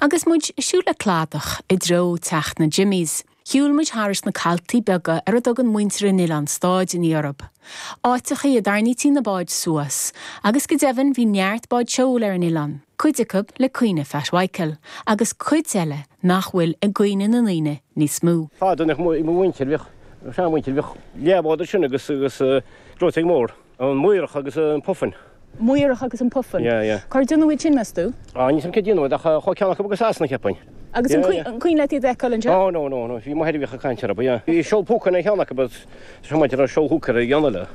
Agus muid ag siúl le cladach i dtreo teach na Jimmies, shiúil muid thairis na caltaí beaga ar a dtugann muintir an oileáin stáideanna orthu, áiteachaí a dtarraingítí na báid suas, agus go deimhin bhí neart báid seoil ar an oileán, cuid acu le cuimhne Phat Mhichael, agus cuid eile nach bhfuil i gcuimhne na ndaoine níos mó. Fadó i mo mhuintir, bhíodh seanmhuintir, bhíodh leathbhád ansin agus gleoiteog mhór. An Maorach agus an Puffin. Maorach agus an Puffin. Yeah, yeah. Cár déanadh iad sin, meas tú? Ah, níl fhios agam cár déanadh iad ach chuaigh ceann acu go Sasana, cheapfainn. Agus an Yeah, yeah. cuimhin leat iad a fheiceáil, anseo? Oh, no, no, no. Bhí m'athair a bhíodh ag caint orthu, ba ea. Bhí seol púcáin ar cheann acu, but is dócha maidir le seol hooker a dhéanamh leo.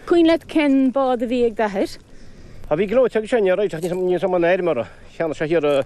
Cuimhin leat cén bád a bhí ag d'athair? Ah, bhí gleoiteog aige sin, yeah, right, ach níl fhios agam an fheirmeora cheana seo thiar a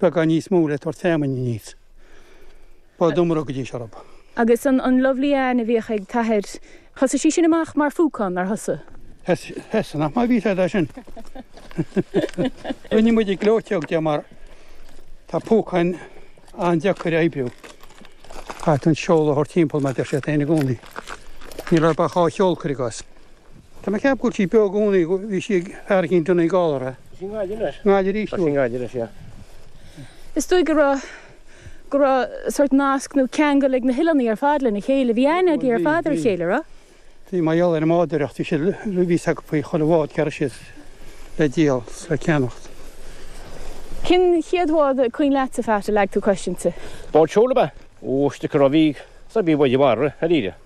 beagán níos mó le tabhairt feamainne níos Ba domhain rud go dtí seo ab. Agus an an Lovely Anne a bhíodh ag t-athair, thosaigh sí sin amach mar phúcán, nár thosaigh? Thosaigh, nach maith a bhí fhios agat é sin. Rinne muid gleoiteog di mar tá púcáin an-deacair a oibriú. Caithfidh tú an seol a thabhairt timpeall mar deir siad féin i gcónaí. Níl orthu ach dhá sheol, cuir i gcás. Tá mé ag ceapadh go bhfuil sí beo i gcónaí, go bhí sí ag airicín Donie Gallaher. Tá sí i nGaillimh anois. Gaillimh arís dúinn. Tá sí i nGaillimh anois, yeah. Is dóigh go raibh, go raibh sórt nasc nó ceangal ag na hoileánaigh ar fad lena chéile. Bhí aithne ag, ar fad ar a chéile, a raibh? Bhí mar gheall ar an mbádóireacht, bhí siad, bhí fhios acu faoi chuile bhád cá raibh siad le díol 's le ceannacht. Cén chéad bhád is cuimhin leatsa, Phat, a leag tú cois inti? Bád seoil ab ea? Ó, stick a raibh, bhí, said bhí báid i bhfarradh, ar iarraidh.